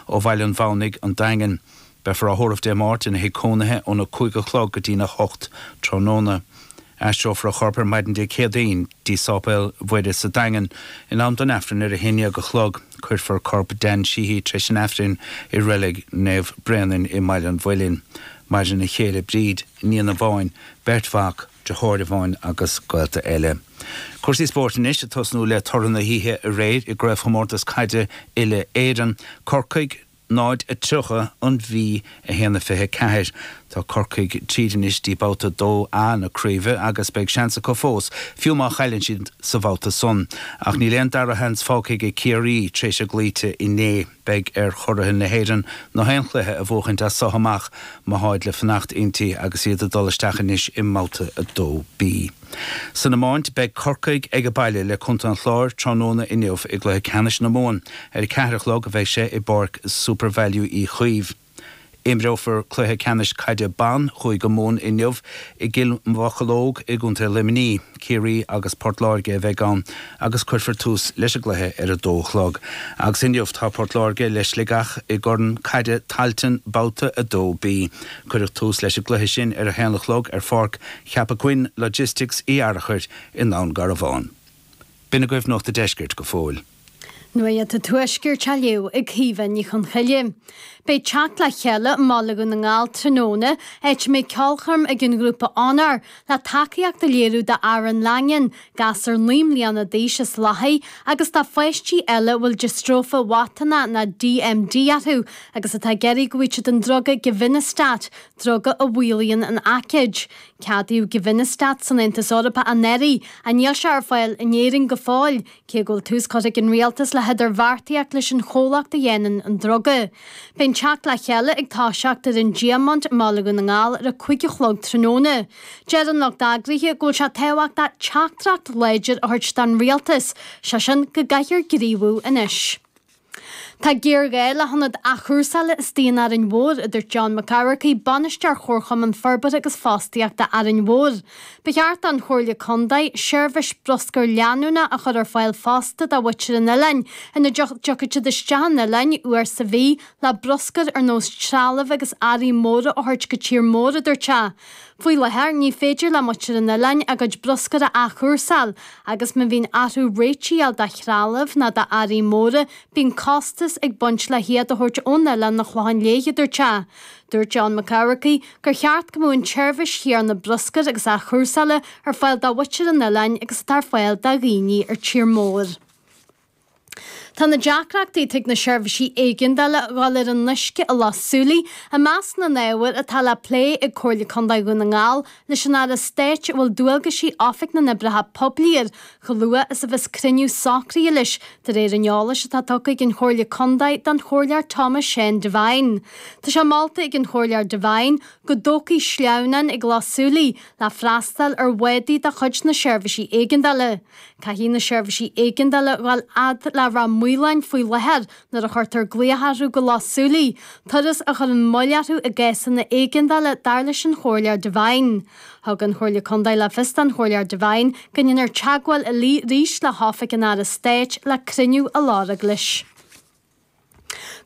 ó Bhaile an Mhaonaigh, an Daingean. Beifear á thórramh Dé Máirt ina thigh cónaithe óna cúig a chlog go dtína hocht tráthnóna. Aistreofar a chorp ar maidin Dé Céadaoin dtí Sáipéal Mhuire sa Daingean in am don Aifreann ar a haon dhéag a chlog. Cuirfear corp Dan Sheehy tar éis an Aifrinn i Reilig Naomh Bréanainn i mBaile an Mhuilinn. Maireann a chéile Bríd, iníon amháin, beirt mhac, deartháir amháin agus gaolta eile. Cúrsaí spóirt anois, ag tosnú le toradh na hoíche aréir i gCraobhchomórtas Caide Uile-Éireann, Corcaigh 0, 30, An Mhí 1, 24. Tá Corcaigh tríd anois dtí babhta 2A na craoibhe agus beidh seans acu fós, fiú má chailleann siad sa bhabhta san. Ach níl aon dara sheans fágtha ag Ciarraí, tar éis a gcloíte inné. Beidh ar churaithe na hÉireann nach aon chluiche a bhuachaint as so amach má tháid le fanacht inti agus iad ag dul isteach anois i mBabhta 2B. San iomáint, beidh Corcaigh age baile le Contae an Chláir tráthnóna inniu i gcluiche ceannais na Mumhan. Ar a ceathair a chlog a bheidh sé i bPáirc SuperValu Uí Chaoimh. Imreofar cluiche ceannais caide ban Chúige Mumhan inniu i gCill Mocheallóg i gContae Luimnigh. Ciarraí agus Port Láirge a bheidh ann agus cuirfear tús leis an gcluiche ar a dó a chlog. Agus inniu tá Port Láirge le Sligeach i gCorn Caide Tailteann Babhta 2B. Cuireadh tús leis an gcluiche sin ar a haon a chlog ar Pháirc Cheapach Choinn Logistics Uí Fhearchair i nDún Garbhán. B'in agaibh Nuacht an Deiscirt go fóill. Nuaíocht an Tuaiscirt á léamh ag Caoimhe Ní Chonchoille. Beidh teacht le chéile i mBaile Dhún na nGall tráthnóna áit a mbeidh ceolchoirm ag an ghrúpa Onóir le tacaíocht a léiriú d'Aaron Langan, gasúr naoi mbliana d'aois as Lathaigh, agus do pháistí eile a bhfuil diostróife mhatánach nó DMD orthu agus atá ag iarraidh go bhfaigheadh siad an druga givinostat, druga a mhaolaíonn an aicíd. Ceadaíodh givinostat san Aontas Eorpach anuraidh ach níl sé ar fáil in Éirinn go fóill, Cé go bhfuil tús curtha ag an Rialtas le hidirbheartaíocht leis an chomhlacht a dhéanann an druga, beidh an teacht le chéile ag toiseacht ar an Diamant i mBaile Dhún na nGall ar a cúig a chlog tráthnóna. Deir an lucht eagraithe go bhfuil sé tábhachtach teachtaireacht láidir a thabhairt don Rialtas, sé sin, go gcaithfear gníomhú anois. Tá géarghá le hionad athchúrsála istigh in Árainn Mhór, a dúirt John Mac Eachmharcaigh, Bainisteoir Chomharchumann Forbartha agus Fostaíochta Árainn Mhór. Ba cheart don Chomhairle Contae seirbhís bruscair leanúnach a chur ar fáil fosta do mhuintir an oileáin, ina dtiocfadh siad isteach chun an oileáin uair sa mhí le bruscar ar nós trealaimh agus earraí móra a thabhairt go tír mór, a dúirt sé. Faoi láthair, ní féidir le muintir an oileáin a gcuid bruscair a athchúrsáil, agus má bhíonn orthu réitithe a fháil de threalamh ná de earraí móra, bíonn costas ag baint le hiad a thabhairt ón oileán chun an Chlocháin Léith, a dúirt sé. Dúirt John Mac Eachmharcaigh gur cheart go mbeadh an tseirbhís chéanna bruscair agus athchúrsála ar fáil do mhuintir an oileáin agus atá ar fáil do dhaoine ar tír mór. Tá na deacrachtaí atá ag na seirbhísí éigeandála dul ar an uisce i Loch Súilí i measc na n-ábhar atá le plé ag Comhairle Contae Dhún na nGall leis an Aire Stáit a bhfuil dualgaisí Oifig na nOibreacha Poiblí air chomh luath is a bheas cruinniú socraithe leis De réir an eolais atá tugtha ag an Chomhairle Contae don Chomhairleoir Tomás Seán Devine tá sé molta ag an Chomhairleoir Devine go dtógfaí sleamhnán ag Loch Súilí le freastáil ar bhádaí de chuid na seirbhísí éigeandála. Caithfidh na seirbhísí éigeandála a ghabháil fhad le Ráth Maoláin faoi láthair nuair a chuirtear glaoch orthu go Loch Súilí, turas a chuireann moill orthu i gcásanna éigeandála dar leis an Chomhairleoir Devine. Thug an Chomhairle Contae le fios don Chomhairleoir Devine go ndéanfar teagmháil arís le hOifig an Aire Stáit le cruinniú a lorg leis.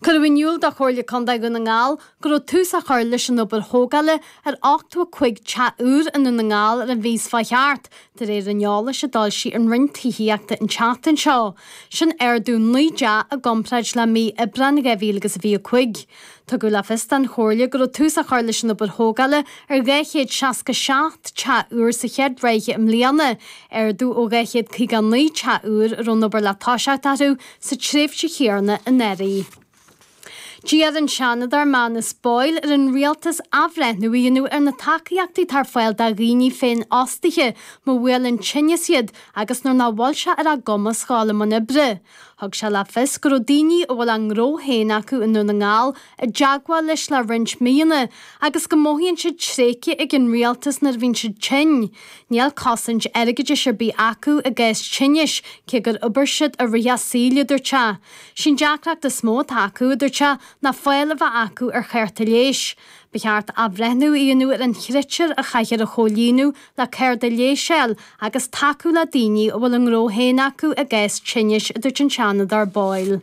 Cuireadh in iúl do Chomhairle Contae Dhún na nGall go raibh tús á chur leis an obair thógála ar 85 teach úr i nDún na nGall ar an mhí seo a chuaigh thart, de réir an eolais a d'fhoilsigh an Roinn Tithíochta an tseachtain seo. Sin ardú naoi dteach i gcomparáid le mí Aibreáin 2025. Tugadh le fios don Chomhairle go raibh tús á chur leis an obair thógála ar 267 teach úr sa chéad ráithe i mbliana, ardú ó 259 teach úr a raibh an obair le toiseacht orthu sa tréimhse chéanna anuraidh. D'iarr an Seanadóir Manus Boyle ar an Rialtas athbhreithniú a dhéanamh ar na tacaíochtaí atá ar fáil do dhaoine féinfhostaithe má bhuaileann tinneas iad agus nuair nach bhfuil sé ar a gcumas a ghabháil i mbun oibre. Thug sé le fios go raibh daoine a bhfuil a ngnó féin acu i nDún na nGall i dteagmháil leis le roinnt míonna agus go mothaíonn siad tréigthe ag an rialtas nuair a bhíonn siad tinn, níl cosaint airgeadais ar bith acu i gcás tinnis cé gur oibir siad i rith a saoil, a dúirt sé. Sí an deacracht is mó atá acu, a dúirt sé, ná fáil a bheith acu ar chárta leighis. Ba cheart athbhreithniú a dhéanamh ar an chritéar a chaithfear a chomhlíonadh le cárta leighis a fháil agus tacú le daoine a bhfuil a ngnó féin acu i gcás tinnis, a dúirt an Seanadóir Boyle.